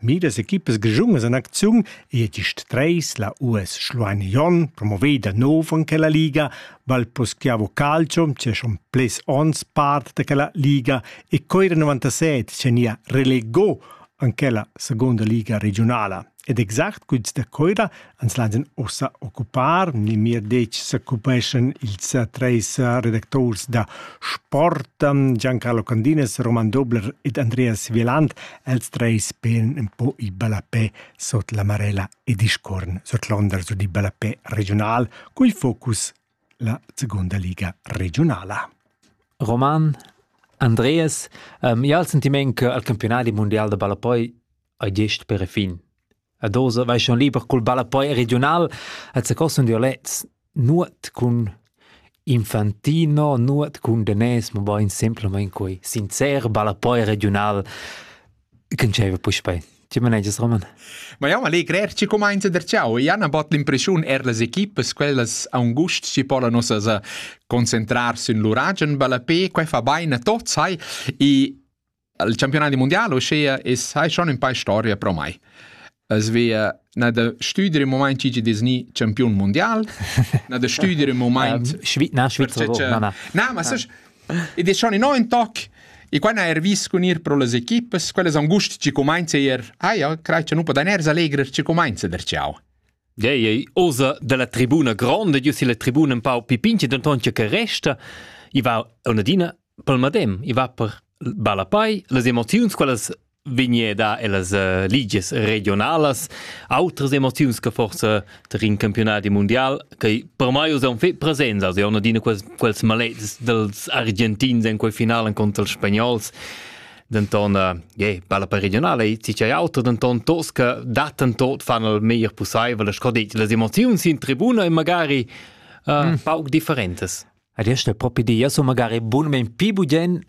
Midas equipas grischungas en acziun e gist treis la US Schluein Jon promoveda nov en quella liga, val poschiavo calcio c'è schon ples ons part da quella liga e coira 97 nia relegò an quella seconda liga regionala. Ed exact guds da coira ans laidan ussa occupar memia detg s'occupeschan ils treis redacturs da sport Giancarlo Candinas, Roman Dobler ed Andreas Wieland, els treis pen un po i ballapè sot la Marella e discorn sot l'onder su di ballapè regional, cui focus la seconda liga regionala. Roman, Andreas, um, ja il sentiment che al campionati mondial da ballapoi hai gest per fin. Ed oz vaixan liber cul ballapoi regiunal et secosun dialects nuot cun infantino, nuot cun danès, mabain simplamaing quai sincer ballapoi regiunal ch'ün dschaiva puspei. Tge manegias, Roman? Ma jau allegrer ci cumainza der ciao. I han bot l'impression er las equipas quellas angust ci pola nossas a concentrar sün l'uragen ballapé, quai fa bain a tots, hai, i al campionati mondiale uschia es hai schon un paar storia pro mai. Es via na da stüdere im moment ci Disney campion mondial, na da stüdere im moment Schweiz, na Schweizer, na na. Na, ma sai ed è schon in neuen Tag e quando hai vis con ir pro le equipe, quelle son gusti ci comincia ir, ah ja, crei che nu podan er allegrer ci comincia der ciao. Gei, ei, osa dalla tribuna grande, io si la tribuna un pau pipinci, denton che resta, i va una dina pel madem i va per ballapei las emoziuns quellas vegneda ellas uh, ligias regionalas outras emoziuns che forse ter in campionati mondial che per mai usan fe presenza se una dina quels quels malets dels argentins in quel finalen contro els spagnols denton uh, yeah, balla per regionale e ti c'è auto denton tos che daten tot fanno il meglio possibile sco detto le emozioni in tribuna e magari uh, mm. pauc differentes Ed esta propi di, io sun magari bunmain pi bugen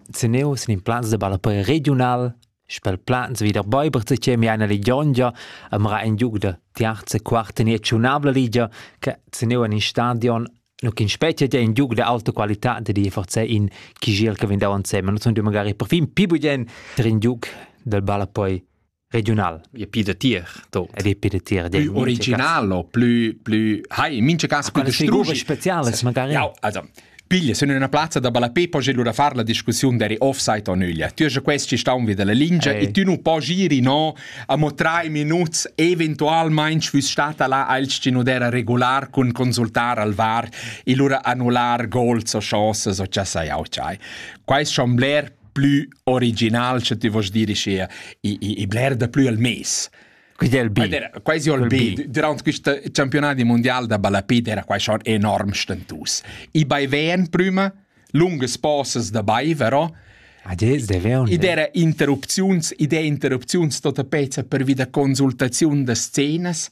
seneu sin in plans de ballapei regiunal, spel plans vi der Bäubers che mi eine Legiongia amra in giug da terza quarta ni tschunabla ligia che seneu in stadion nu kin specie ja in giug de alta qualità de di forse in chi gel che vin dauern seme, nu sun du magari perfin pi bugen ter in giug del ballapei regional e pi da tier tot ed e pi da tier dei originalo plü plü hai mincha cas plü distrugi speciales magari ja also piglia sono in una piazza da Balape poi gelo da far la discussione deri offside o nüglia tu hai questi staun vi della lingia e tu non puoi giri no a mo tre minuti eventualmente fus stata là al scinudera regular con consultar al var e lura annular goals o chances o cha sai au chai quais chambler plü original, sche ti vos dire sia, i, i, i bler da plü al mes. Quindi è il B. Era quasi il B. Durante questo campionato mondiale da balapid era quasi schon enorm stentus. I baiven prima, lunge pauses dabei, vero? Ah, ed era interrupziuns, idee interrupziuns, tota pezza per via da consultaziun da scenas.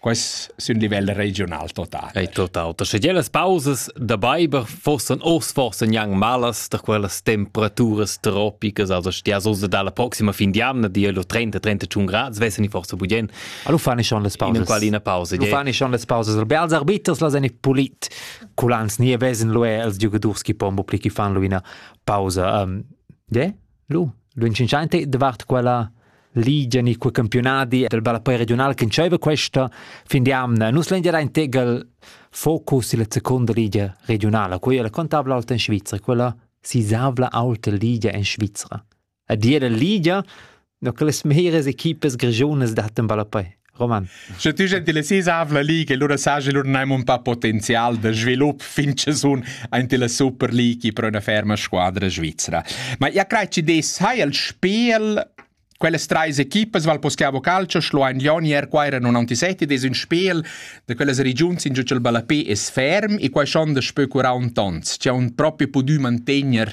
Quais sun livel regional total? Ei total. Da sche las pausas da beiber forsan ors forsa gnang malas da quellas temperaturas tropicas, also stia so dalla proxima fin di anna di lo 30-31 grad, svessan i forsa budien. Allo fani schon las pausas. In quali ina pausa. Lo fani schon las pausas. Albe als arbiters las en pulit culans nie vesen lo els giugadors chi pombo pli chi fan lo ina pausa. Um, yeah? Lu, lunschenschanti davart quella ligia ni quei campiunadi del ballapei regional che dscheva questa fin di amna nus lengia ein tegel focus illa seconda ligia regionala quella la contabla alta in Svizra quella sisavla alta ligia in Svizra a dir la ligia no che las meras equipes grigiunas dattan ballapei Roman. Sche tü gentilessis avla lì che lura saja lur neim un pa potenzial da svilup fin che sun aint la Super League pro üna ferma squadra svizra. Ma ja crei chi dess hai il spel Quelles treis equipas Val Poschiavo Calcio, Schluein Lioni, Erquaira 97 des un spel da quellas regions in giu il ballapé es ferm e quai schon da spö 40 ons. C'è un propi pudü mantegner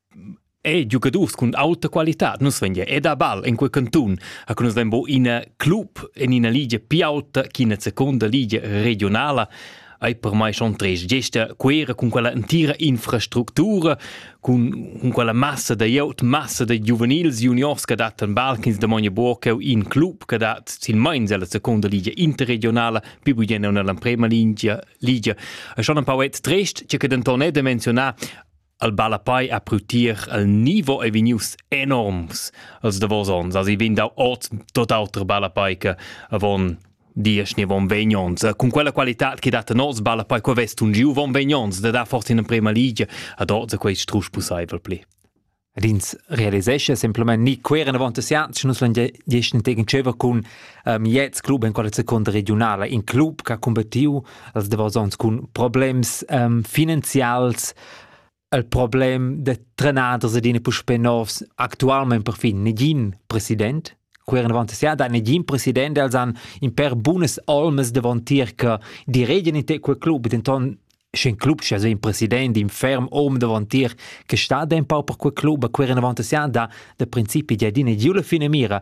E giugadurs cun auta qualitad. Nus vegn ed a ball en quei cantun, a nus vegn bo ina club en ina ligia più auta ch'ina seconda ligia regionala ei per mai schon tres gesta quera cun quella entira infrastructura, cun, cun quella massa da iout, massa da giuvenils juniors che dat en ball ch'ins damogna buca cheu in club che dat silmeins ella seconda ligia interregionala, più bugen nella prima ligia, ligia. E schon un pauet trist, che che denton è da menzionar al ballapei a prutier al nivo ei vegnius enorms als davos ons also vegn dau ot tot auter ballapei che avon dies ni von vegnons cun quella qualità che dat nos ballapei co vest un giu von vegnons da dar forse in emprema ligia ad ot quei strusch pusseivel pli Rins realisesce semplament ni queren avant sians nus lan gieschen tegen tscheva cun um, jets club en quella secunda regionala in club che ha combattiu als davosons cun problems um, finanzials il problem de trenaders ed in puspè novs actualment perfin negin president queran avanti sia da negin president els han in per bunas olmas davantier che die reden in te quel club denton sch'in club sche so in president in ferm om davantier che sta da un pau per quel club queran avanti sia da da principi di adina giula fine mira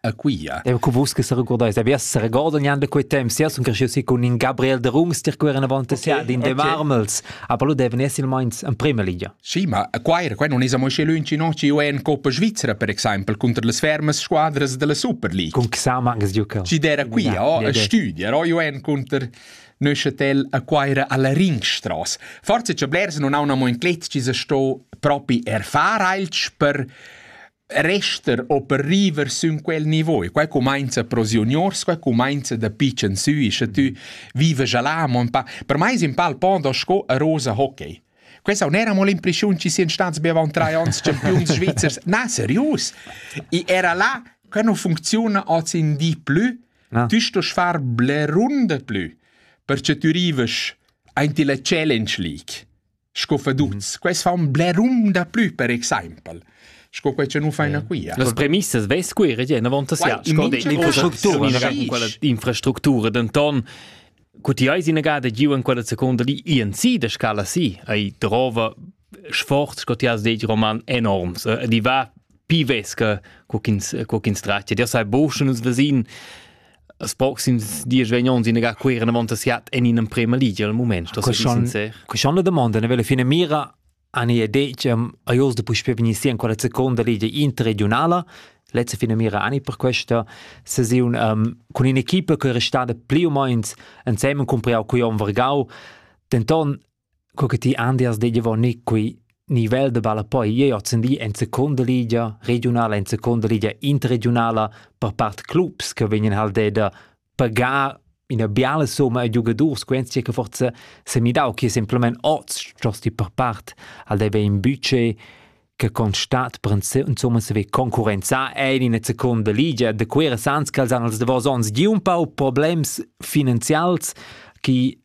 a Quia. E cu vus che se recordeis, avias se regorda gnanc da quei temps, sia sun cresciuti con in Gabriel de Rumster che era avanti okay, sia din okay. de marmels, a palo deven esser meins in prima ligia. Sì, ma a qua era qua non es amo sche lunci no ci UN Coppa Svizzera per exempel contra les fermas squadras della Super League. Con Xama anche giocava. Ci dera qui, ja, oh, ja, a studia, ro UN contro Neuchâtel a Quaira alla Ringstrasse. Forse c'è blers non ha una mo in cletsch, ci se sto propi erfar alch per Rester o per river sün quel nivo e quai cumainza pro si uniuors, quai cumainza dapi ch'ensü e scha tü vives là amo ün pa. Per mai es ün pal pondo sco a rosa hockey. Questa non era mo l'impreschiun chi sian stats be avant trais ons champiuns svizzers. Na, serius! I era là che non funziuna oz in di plü. Ah. Tü stos far bler runde plü, perche tü rives aint illa Challenge League. sco feduts. Quels fan blerum da plü per exaimpel sco quei che nu faina quia. Las premissas vess qui regien avant sia sco d'infrastructura denton cu ti eis inagada giu en quella seconda li INC de scala si ei drova sforz sco ti has detg roman enorms e di va pi vesca co chins co chins trattia dir sai boschen us vesin As proxims diesch vegn ons in ga queer in avant siat en in emprema ligia al moment. Das ist sincer. Queixon la domanda ne vela fine mira ani e decem a jos de puspé vegni sia in quella seconda ligia interregionala letzte fine mira ani per questa sesiun um, con in equipa che è restada più o meno insieme con Priao Cuion Vergau denton co che ti andiast dejavonir quei nivel da ballapoi jeu ozendi en seconda ligia regiunala en seconda ligia interregiunala per part clubs che vegnan halt da pagar ina biala somma a giugadurs quentia che forza semidau che semplamain oz stosti per part al deve in budget che constat per insomma se ve concurrenzar ein in seconda ligia da quera sans che els han als davos ons gi un pau problems finanzials che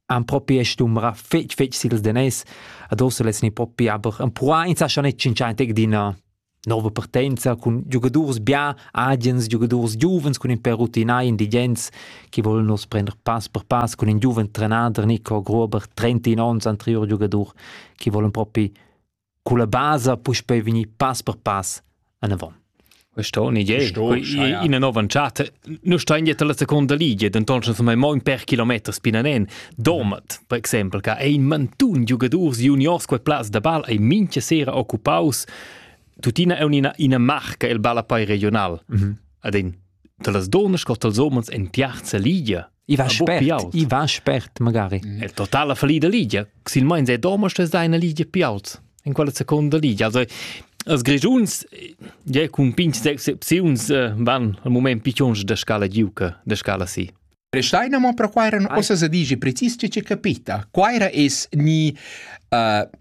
han propi stumra fetg fetg sils danès ad ossa lets ni propi aber empruar insascha net tschintscheintig d'ina nova partenza cun giugadurs bia agens giugadurs giuvens cun in per rutinai indigents che vollen nos prender pass per pass cun in giuven trenader Nico Grober 31 onns anterior giugadur che vollen propi Cu la basa puspei vegnir pass per pass anavon. Questa è un'idea, ina nova entschatta. Noi stain dietro la seconda ligia, denton schon mai mo in per kilometr spinanen. Domat, per exempel, che è in mantun giugadors juniors quei plaz da ball ei mincha sera occupaus. Tuttina è una, una marca il ballapei regional. Mm -hmm. Ad in, dalas donas cot als homens en piazza ligia. I va spert, i va spert magari. È totala fallida Lidia, sil meins è domo stes da eine Lidia più alta in quella seconda Lidia. Also als Grigiuns ja cun pinch excepziuns eh, van al moment piccions da scala giuca, da scala si. Prestaina mo per quai eran ossa se dici precis che capita. Quaira es ni uh,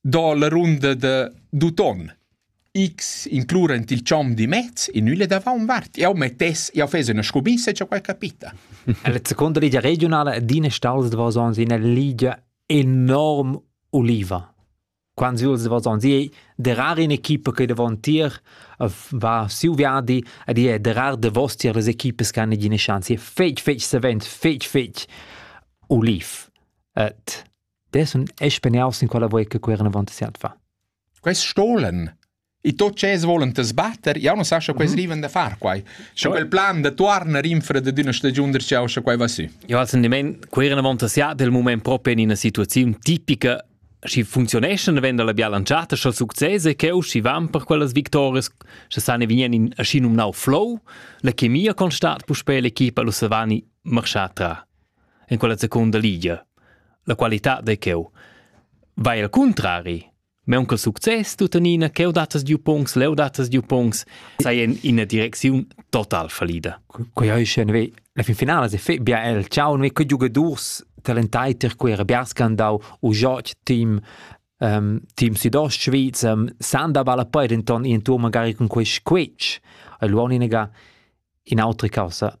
do la runda da d'uton. X inclurent il chom di mez in üle da vaun vart. Eu mettess, eu fes üna scubissa e quai capita. La seconda ligia regionala d'ina stalls de Vasons in ligia enorm uliva. Quando si els Vasons è derar in equipe che davon tier va siu viadi ed è derar de vos tier les equipes che hanno eine Chance. È fetg fetg savent, fetg fetg uliv. Et dessun espeniaus in quella voi che querna avant siat fa. Quest stolen E tot ce volen te sbatter, ja non sa sche quei riven da far quai. Scho quel plan de tuarna rinfra de d'una stagiun der ciao sche quai va su. Ja also de men querna avant siat del moment proprio in una situazione tipica si funzioneschan venda la biala lanciata scho successe che u si van per quellas victorias che sane vien in aschi num nau flow la chemia constat pu spe l'equipa lo savani marschata en quella secunda ligia. La qualitad de cheu. Vai al contrari, meun che success tuttenina cheu datas giu pungs, leu datas giu pungs, sei in ina direcziun total fallida. Quei hai schon ve la fin finala se fe bia el ciao ne che giugadors talentai ter quei Biascandau u Joch team um, team Südost Schweiz um, san da balla poi denton in tour magari con quei squetsch. Ai luoni nega in autre causa